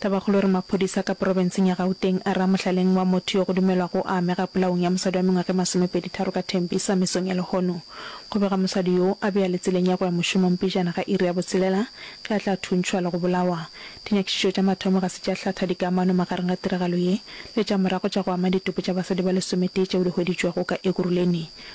Tabakgolo e re maphodisa ka porofenseng ya Gauteng a re a mohlaleng wa motho yo go dumelwago a amega polaong ya mosadi wa mengwaga e masomepedi tharo ka Tembisa mesong ya lehono. Go bega mosadi yo a be a le tseleng ya go ya mošomong pejana ga iri ya botshelela ge a tla thuntšhwa le go bolawa. Dinyakišišo tša mathomo ga se tša hlatha dikamano magareng ga tiragalo ye le tša morago tša go ama ditopo tša basadi ba lesometee tšeo di hweditšwego ka Ekurhuleni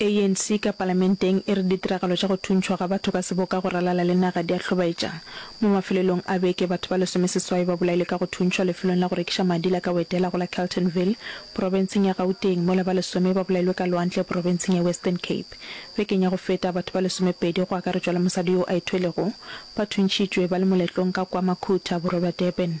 ANC ka palamenteng e re ditiragalo tša go thuntšhwa ga batho ka seboka go ralala le naga di a hlobaetša. Mo mafelelong a beke, batho ba lesomeseswai ba bolailwe ka go thuntšhwa lefelong la go rekiša madi la Kawedela go la Keltonville, profenseng ya Gauteng, mola ba lesome ba bolailwe ka lwantle profenseng ya Western Cape. Bekeng ya go feta, batho ba lesomepedi, go akaretšwa le mosadi yo a ithwelego, ba thuntšhitšwe ba le moletlong ka kwa Makhutha, borwa bja Durban.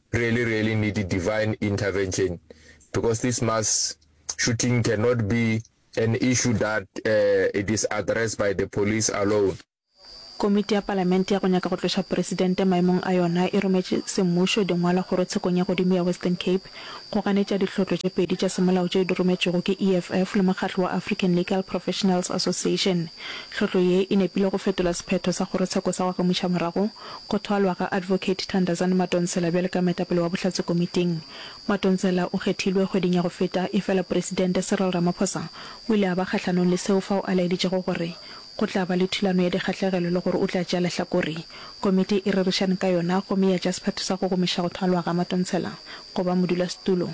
really really need a divine intervention because this mass shooting cannot be an issue that uh, it is addressed by the police alone. Komiti ya Palamente ya go nyaka go tloša Presidente maemong a yona e rometše semmušo dingwalo kgorotshekong ya godimo ya Western Cape go ganetša dihlotlo tše pedi tša semolao tšeo di rometšwego ke EFF le mokgatlo wa African Legal Professionals Association. Hlotlo ye e nepile go fetola sephetho sa kgorotsheko sa go agamuša morago go thwalwa ga Advocate Thandazani Madonsela bjale ka moetapele wa Bohlatse Komiting. Madonsela o kgethilwe kgweding ya go feta, efela Presidente Cyril Ramaphosa o ile a ba kgahlanong le seo fao a laeditšego gore go tla ba le thulano ya dikgahlegelo le gore o tla tšea lehlakore. Komiti e rerišane ka yona gomme ya tšea sephetho sa go gomiša go thwalwa ga Madonsela go ba modulasetulo.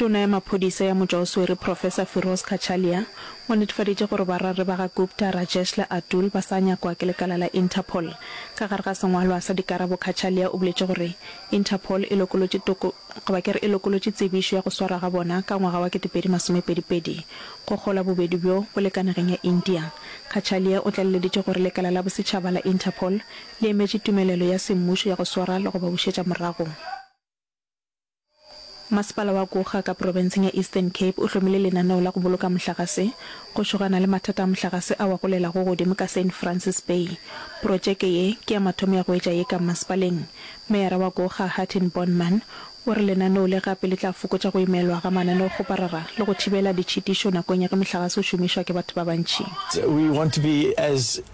Tona ya Maphodisa ya Motšwa o Swere Professor Firoz Kachalia o netefaditše gore bararri ba ga Gupta, Rajesh le Atul ba sa nyakwa ke lekala la Interpol. Ka gare ga sengwalwa sa dikarabo Kachalia o boletše gore Interpol e lokolotše toko, goba ke re e lokolotše tsebišo ya go swarwa ga bona ka ngwaga wa kete pedi masome pedi pedi go kgolwa bobedi bjo bo le ka nageng ya India. Kachalia o tlaleleditše gore lekala la bosetšhaba la Interpol le emetše tumelelo ya semmušo ya go swara le go ba bušetša morago. Masepala wa Gokga ka porofenseng ya Eastern Cape o hlomile lenaneo la go boloka mohlagase go šogana le mathata a mohlagase a wa golelago godimo ka Saint Francis Bay. Protšeke ye ke ya mathomo ya go etša ye ka masepaleng. Meyara wa Gokga Hartin Bondman o re lenaneo le gape le tla fokotša go imelwa ga mananeokgoparara le go thibela ditšhitišo nakong ya ge mohlagase o šomišwa ke batho ba bantši.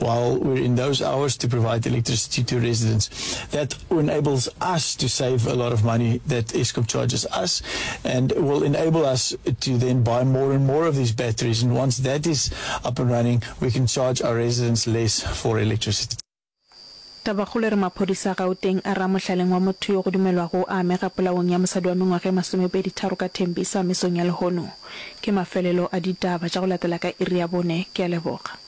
while we're in those hours to provide electricity to residents. That enables us to save a lot of money that Eskom charges us and will enable us to then buy more and more of these batteries. And once that is up and running, we can charge our residents less for electricity. Tabakgolo e re maphodisa a Gauteng a re a mohlaleng wa motho yo go dumelwago a amega polaong ya mosadi wa mengwaga e masomepedi tharo ka Tembisa mesong ya lehono. Ke mafelelo a ditaba tša go latela ka iri ya bone. Ke a leboga.